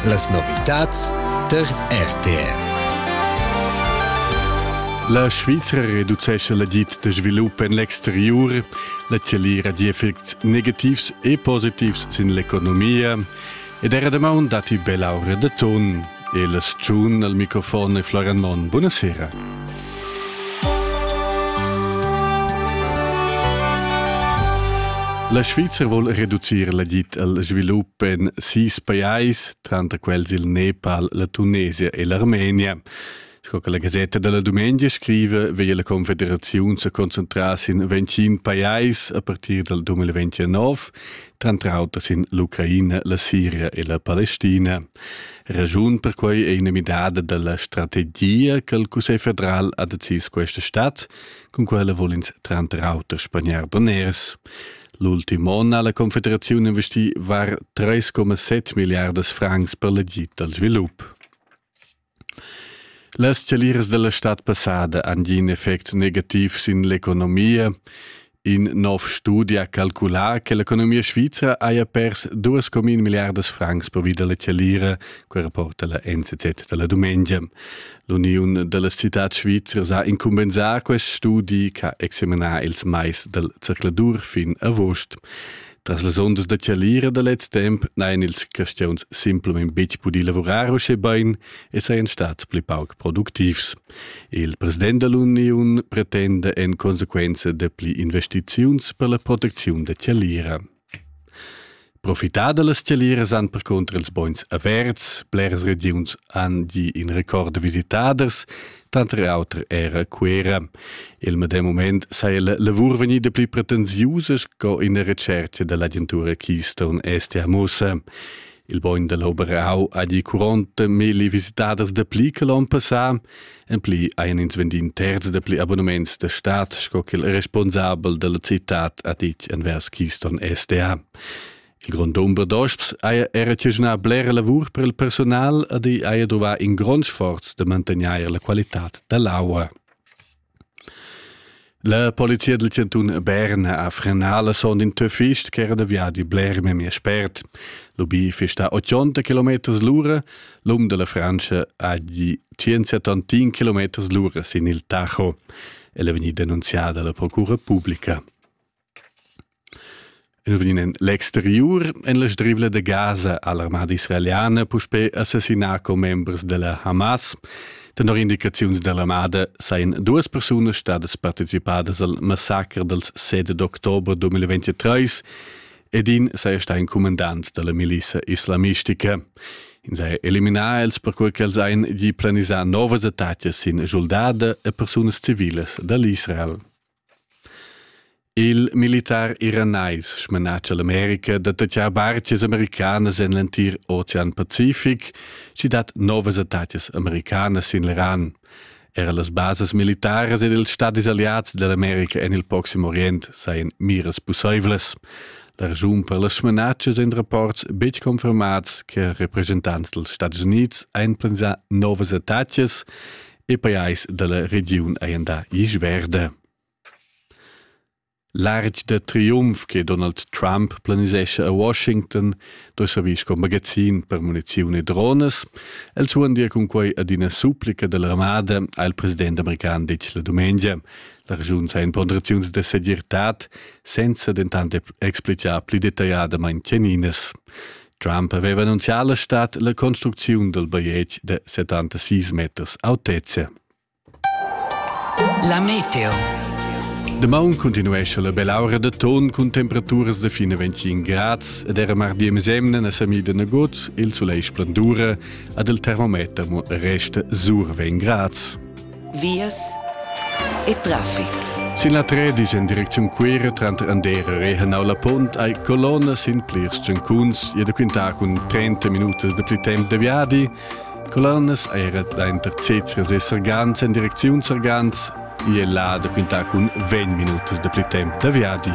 Las novitads tar RTR. La Svizra reducescha l'agid de svilup en l'exterior. La Tscheli ha effects negativs e positivs sin l'economia ed era damaun datti bella ora de ton. E la stgiun al microfon è Florian Monn. Buonasera. La Svizra vuol reducir l'agit al svilup en sis pajais, tranter quels il Nepal, la Tunesia e l'Armenia. Sco che la Gasetta della Dumengia scrive, veglia la Confederaziun se concentrar sin 25 pajais a partir del 2029, tranter auter sin l'Ucraina, la Siria e la Palestina. Ragiun per quei è ina midada della strategia che il Cussegl federal ha decis questa stadt, con quella vuol ins tranter auter spaniar doners. L'ultimo onn ha la Confederazione investì var 3,7 miliardas francs per l'agid al sviluppo. Las scaliras dalla stad passada han gì in effect negativ sin l'economia. In nov studi ha calculà che l'economia svizra haja pers duas comin milliardas francs pervi da la chalira, quai rapporta la NZZ da la dumengia. L'uniun da las citads svizras ha incumbensà quest studi che ha examinà ils mais dal zercladur fin agost. Tras las ondas da chalira da lez temp n'hain ils cristians simplamain betg pudì lavurar uschè bain e sajan stads pli pauc productivs. Il president da l'uniun pretenda en consequenza dapli investiziuns per la protecziun da chalira. Profitar da las chaliras han percunter ils bogns averts. Bleras regiuns han gì in record da visitaders. Tanter auter era Cuera. Il medem moment saja la lavur vegnida pli pretensiusa sco ina retschertga da l'agentura Keystone Est a Mossa. Il bogn da l'Oberau ha di curonta mille visitaders da pli che l'on passà, en pli ein ins vendi in terz da pli abonnements da stat sco che il responsabel dalla città ha ditg envers Keystone SDA. Il grond dumber d'osps haja era tigignà blera lavur per il persunal ed i haja duvà in grond sforz da mantegnair la qualitad da l'aua. La polizia del Cantun Bern ha frenà la sonda in töfist ch'era da viadi bler memia spert. L'ubi fista 80 km l'ura, l'um della Francia ha gi 175 km l'ura sin il Tacho. El è vegnì denunziada alla procura pubblica. El vegn en l'exteriur en la strivla da Gaza ha l'armada israeliana puspè assassinà commembers da la Hamas. Tenor indicaziuns da l'armada sajan duas persunas stadas participadas al massacre dels 7 d'october 2023 ed in saja stà in cumandant da la milissa islamistica. Ins ha eliminà els perquai ch'els hajan gì planisà novas attacas sin schuldada e persunas civilas da l'Israel. Il militar iranais smanatscha l'America da tatgar bartgas americanas en l'entir Ocean Pacific, sch'i dat novas attacas americanas sin l'Iran. Era las basas militaras ed ils stadis aliats da l'America en il Proxim Orient sajan miras pussaivlas. La raschun per las smanatschas en rapports betg confermats che representants dals Stati Unids han planisà novas attacas e pajais dalla regiun ein da isch verde. Larg de triumf che Donald Trump planisesce a Washington do servir sco magazin per muniziun e drones. El suondia cun quei ad ina supplica dell'armada al president american ditg la dumengia. La regiun sa in ponderaziuns de segirtad, senza dentant explicar pli detagliadamente teninas. Trump aveva annunzià alla stad la construcziun del bajetg de 76 meters autezza. La meteo. De maun continuesce la belaura de ton cun temperaturas de fine 25 grads ed era mardi mesemne na samida negoz il soleil splendura ad il termometer mo resta sur 20 grads. vias e traffic. Sin la Tredisch en direcziun Cuira tranter Andera e Henau la Pont hai colonna sin plirs tschencuns e da quintar cun 30 minutas de pli temp de viadi. Colonnas era dainter Cezres e Sargans en direcziun Sargans e là da quintar cun 20 minutas de pli temp de viadi.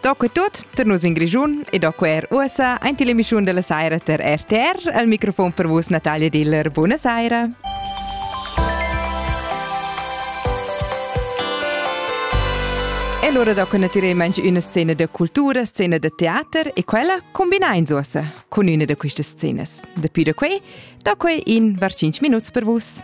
Tocca tut per nus in Grischun e do quer ussa ein ti l'emissiun della saira per RTR al microfon per vus Natalia Diller. Buona saira. E allora dopo ne tiremo anche una scena di cultura, scena di teater e quella combina in sosa con una di queste scene. Da più da qui, da qui in var 5 minuti per vus.